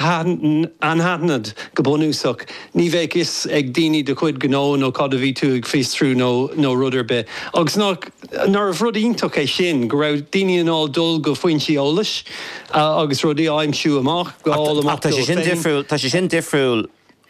anaithnid, go bunúsach. Ní bheadh fhios ag daoine do chuid gnó nó cad a bhí tú ag fiosrú nó rud ar bith. Agus nach, nárbh rud iontach é sin, go raibh daoine in ann dul go foinsí eolais agus rudaí a aimsiú amach, a fháil amach dóibh féin. Ach tá sé sin difriúil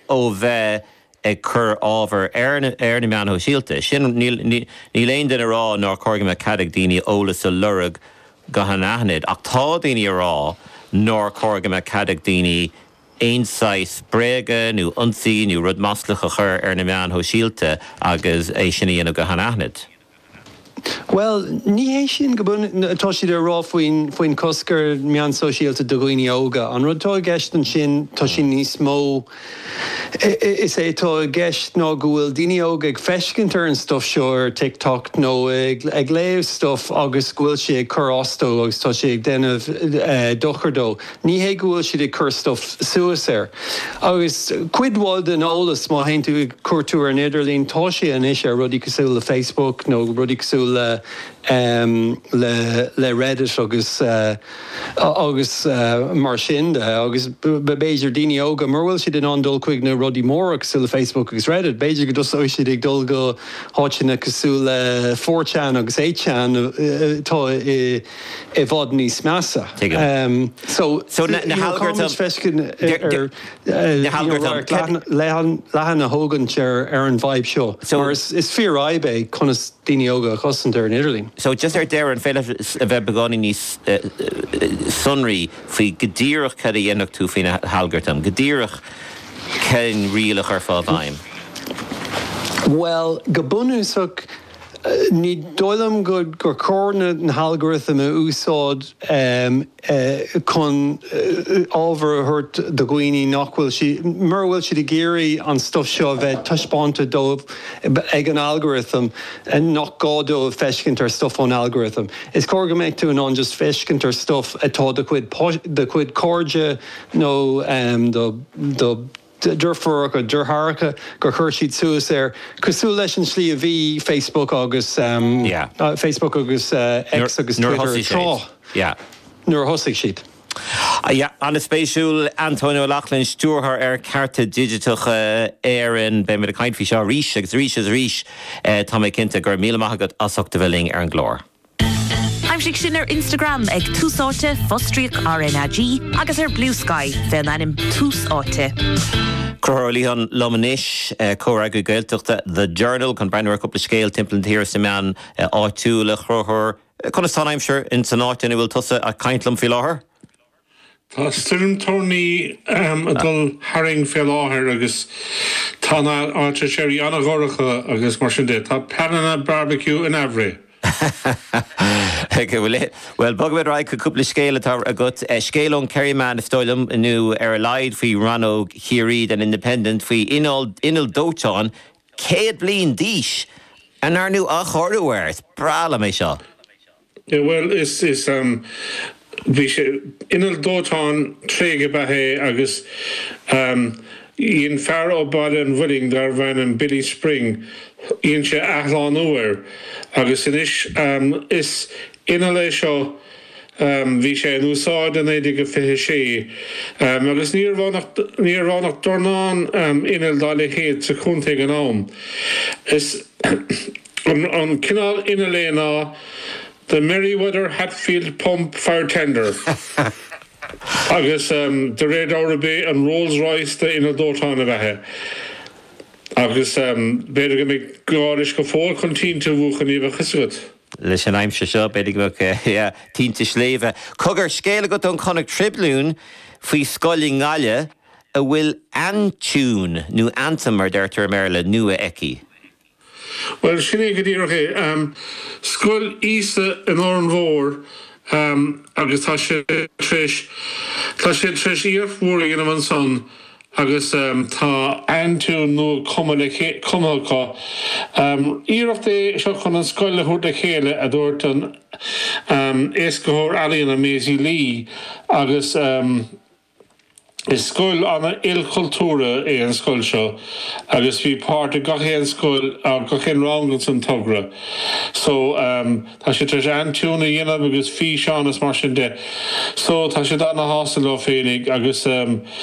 ó bheith. ag cur ábhar ar na meáin shóisialta. Sin, níl aon duine ag rá nár chóir go mbeadh cead ag daoine eolas a lorg go hanaithnid, ach tá daoine ag rá nár chóir go mbeadh cead ag daoine aon saghas bréaga nó ionsaí nó rud maslach a chur ar na meáin shóisialta agus é sin a dhéanamh go hanaithnid. Bhuel, ní hé sin cad atá siad a rá faoin chosc ar meáin sóisialta do dhaoine óga. An rud atá i gceist ansin, tá sin níos mó, is é atá i gceist ná go bhfuil daoine óga ag feiscint ar an stuif seo ar TikTok nó ag léamh stuif agus go bhfuil sé ag cur as dó agus tá sé ag déanamh dochar dó. Ní hé go bhfuil siad ag cur stuif suas air. Agus cuid mhaith den eolas, má théann tú ag cuartú ar an idirlíon, tá sé anois ar rudaí cosúil le Facebook nó rudaí cosúil le Reddit agus mar sin de. Agus b'fhéidir daoine óga, mura bhfuil siad in ann dul chuig na rudaí móra cosúil le Facebook agus Reddit, b'fhéidir go dtosóidh siad ag dul go háiteanna cosúil le 4chan agus 8chan atá i i bhfad níos measa. Tuigim. So, na halgartaim. Na halgartaim. Leathan a thógaint ar an bhfadhb seo. Mar is fíorfhadhb é conas daoine óga a chosaint ar an idirlíon. So, just ar deireadh, an féidir a bheith beagáinín níos sonraí faoi go díreach cad a dhéanfadh tú faoi na halgartaim? Go díreach cén riail a chuirfeá i bhfeidhm? Bhuel, go bunúsach. Ní dóigh liom gur chóir na algorithm a úsáid chun ábhar a thabhairt do dhaoine nach bhfuil siad, mura bhfuil siad ag iarraidh an stuif seo a bheith taispeánta dóibh ag an algorithm, nach gá dóibh feiscint ar stuif ón algorithm. Is cóir go mbeadh tú in ann just feiscint ar stuif atá do chuid cairde nó do. deirfiúracha, deartháireacha gur chuir siad suas air, cosúil leis an tslí a bhí Facebook agus Yeah. Facebook agus X agus Nuair a Twitter thosaigh siad. tráth, Yeah. nuair a thosaigh siad. Yeah, an-spéisiúil. Antóin Ó Lachtnáin, Stiúrthóir ar Chearta Digiteacha Éireann. Beidh muid ag caint faoi seo arís agus arís is arís, tá mé cinnte. Go raibh míle maith agat as ucht a bheith linn ar an gclár. Aimsigh sinn ar Instagram ag Tús Áite, fostríoc RnaG, agus ar Bluesky fé an ainm Tús Áite. Concubhar Ó Liatháin liom anois, comhfhreagraí Gaeltachta The Journal, chun breathnú ar chúpla scéal timpeall na tíre sna meáin áitiúla. A Choncubhair, conas tá an aimsir in san áit ina bhfuil tusa ag caint liom faoi láthair? Tá stoirm toirní ag dul tharainn fé láthair agus tá na néalta spéire ana dhorcha agus mar sin de, tá pleananna barbecue in aimhréidh. Bhuel, bogfaimid ar aghaidh chuig cúpla scéal atá agat. Scéal ón Kerryman is dóigh liom, nó ar a laghad faoi rannóg Chiarraí den Independent, faoi inneall dóiteáin 100 bliain d'aois a ndearnadh athchóiriú air. Is breá liom é seo. Bhuel, is, is, bhí sé, inneall dóiteáin tréigthe ab ea é agus dhein fear ó Bhaile an Mhuilinn darbh ainm Billy Spring, dhein sé athshlánú air agus anois is inneall é seo, bhí sé in úsáid i 1926 agus níorbh ann ach, níorbh ann ach dornán innill dá leithéid sa chontae ag an am. Is. An cineál innill é ná The Merryweather Hatfield Pump Fire Tender agus de réir dealraimh b'é an Rolls Royce de inneall dóiteáin ab ea é agus b'fhéidir go mbeidh gá leis go fóill chun tinte a mhúchadh ní bheadh 'fhios agat. Leis an aimsir seo b'fhéidir go mbeadh, yeah, tinte sléibhe. Cogar, scéal agat ón Connacht Tribune faoi scoil i nGaillimh a bhfuil aintiún, nó anthem mar deirtear i mBéarla, nua aici? Bhuel, sin é go díreach é. Scoil Íosa in Órán Mór agus tá siad tar éis, tá siad tar éis iarracht mhór a dhéanamh ansan agus tá. aintiún nua cumtha le, cumtha acu. Iarracht é seo chun an scoil a thabhairt le chéile, a dúirt an, Éascaitheoir Ealaíona, Maisie Lee agus. Is scoil ana ilchultúrtha é an scoil seo agus bhí páirt ag gach aon scoil, gach aon rang ins an togra so ehm tá siad tar éis aintiún a dhéanamh agus físeán is mar sin de so tá siad ana shásta leo féinig agus ehm,